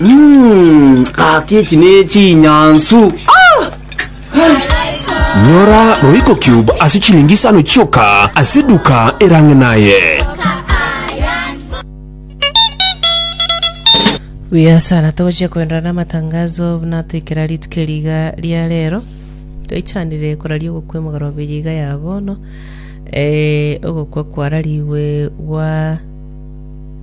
Mm, kaki echi nechinyansu nyora roiko cube ase chilingi isano chioka ase duka erang'e naye buya sana togochia koenderera n'amatangazo buna toikera rituko eriga ria rero toichanire koraria ogokwa emogaro obiri iga ya bono eh, ogokwa kwararigwe gwa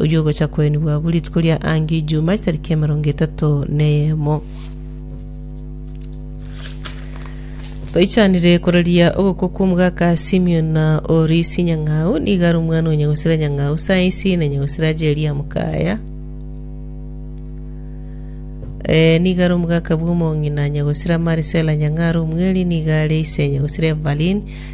oyio ogocha koenigwa abwo rituko ria Angi Ijuma chitariki emerongo etato neyemo. Toichanire kororia ogokwo kw'omogaka Simion na Orisi Nyang'au, nigo are omwana o Nyagosira Nyang'au saisi na Nyagosira Jeria Mukaya. Eh, nigo are omogaka bw'omong'ina Nyagosira Marisela Nyang'aro omweri, nigo are ise Nyagosira Evalin,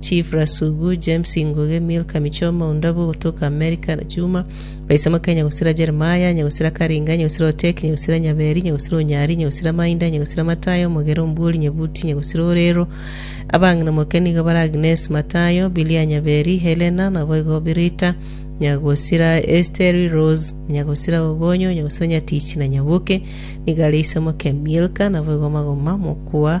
Chief Rasugu, James Ingoge, Milka Michoma, Ondabu ogotoka Amerika, na Juma Baisamoke, Nyagosira Jeremiah, Nyagosira Karinga, Nyagosira Oteki, Nyagosira Nyaberi, Nyagosira Onyari, Nyagosira Mainda, Nyagosira Matayo, Omogera Ombuori, Nyebuti, Nyagosira Orero. Abang'ina moke nigo bare Agnes Matayo, Bilia Nyaberi, Helena, naboigo Birita, Nyagosira Esteri, Rose, Nyagosira Obonyo, Nyagosira Nyatichi na Nyaboke, nigo are Isamoke Milka, naboigo Magoma, Mokwa,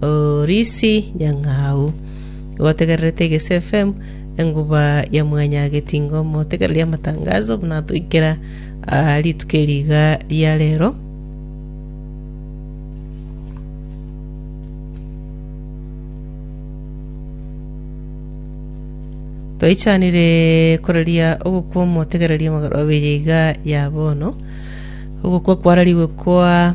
Oh Risi nyang'au, gwategererete Egesu FM, enguba ya mwanyagetinga omotegereri amatangaso, buna atoikera aa rituko eri iga ria rero. Toichanire koreria ogokwa omotegereri amagoro abere iga ya bono, ogokwa kwararigwe kwa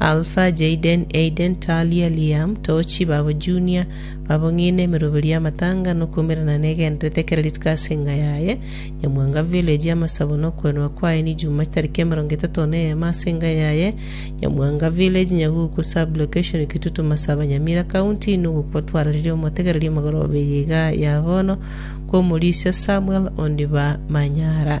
Alpha, Jayden, Aiden, Talia, Liam, Tochi, babo Junior, babo ng'ina emeroberi y'amatanga nokwaumerana negenderete kera rituko ase enga yaye, Nyamwanga village y'amasabo nokwenwa kwaye ni Juma chitariki emerongo etato neyemo ase enga yaye, Nyamwanga village, Nyaguku sub location Kitutu Masaba Nyamira county nogokwa twararire omotegereri amagoro babere iga yabono kw'omorisia Samuel Ondiba Manyara.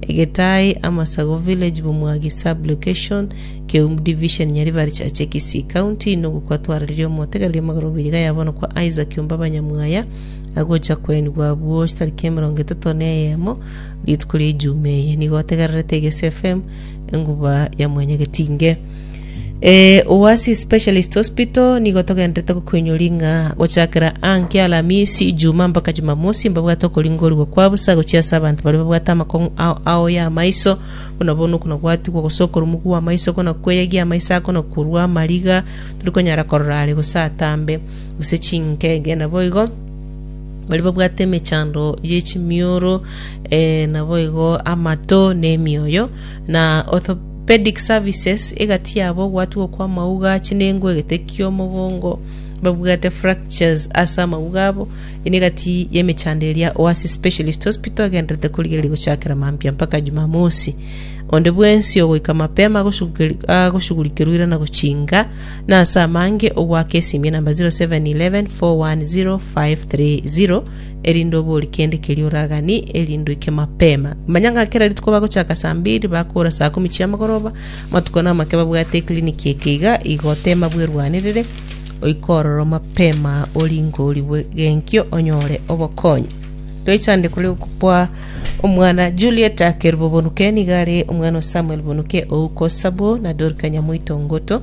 Egetai, Amasago Village Bomwagi Sub Location, Keum Division Nyaribari Chache Kisii County Inogu kwatwaranirie omotegereria magoro obuyaga yabo no kwa Isaac Omba Banyamwaya agocha koenigwa abwo chitariki emerongo etato na eyemo rituko ria Ijumaa eye nigo otegererete Egese FM enguba ya mwenyegetinge Eh, Oasis Specialist Hospital nigo togenderete gokoinyoria ng'a gochakera anke Alamisi, Ijumaa mpaka Jumamosi mbabwate okoringorigwa kwa bosa gochia ase abanto baria babwate amakong'u ao ao y'amaiso, buna bono okonagwatigwa gose okorumwa kw'amaiso, okonakweyia amaiso aa, okonakorwa amariga, tari konyara korora are gose atambe, gose chingege. Naboigo baria babwate emechando ye chimioro eh, naboigo amato na emioyo na ortho Pedic Services egati yabo ogwatwa okwa mauga a chinengo egete kiomogongo babwate fractures ase amauga abo ene egati yemechando eria Oasis Specialist Hospital agendererete korigereria gochakera maambia mpaka Jumamosi onde bwensi ogoika mapema agoshugurikerwa irana gochinga na ase amange ogwaka esimia namba 0711 410 530 erinde obori kende keria oraganie, erinde oike mapema. Manya ng'a kera rituko bagochaka saa mbiri, bakoora saa kumi chi'amagoroba, amatuko na amake babwate ekliniki eke iga, igo tema bwerwanerere, oike ororo mapema oringe origwe genkio onyore obokonyi. Toichandire kore okwa omwana Juliet Akerubo Bonuke nigo are omwana o Samuel Bonuke ouko Sabo na Dorika Nyamoito Ngoto.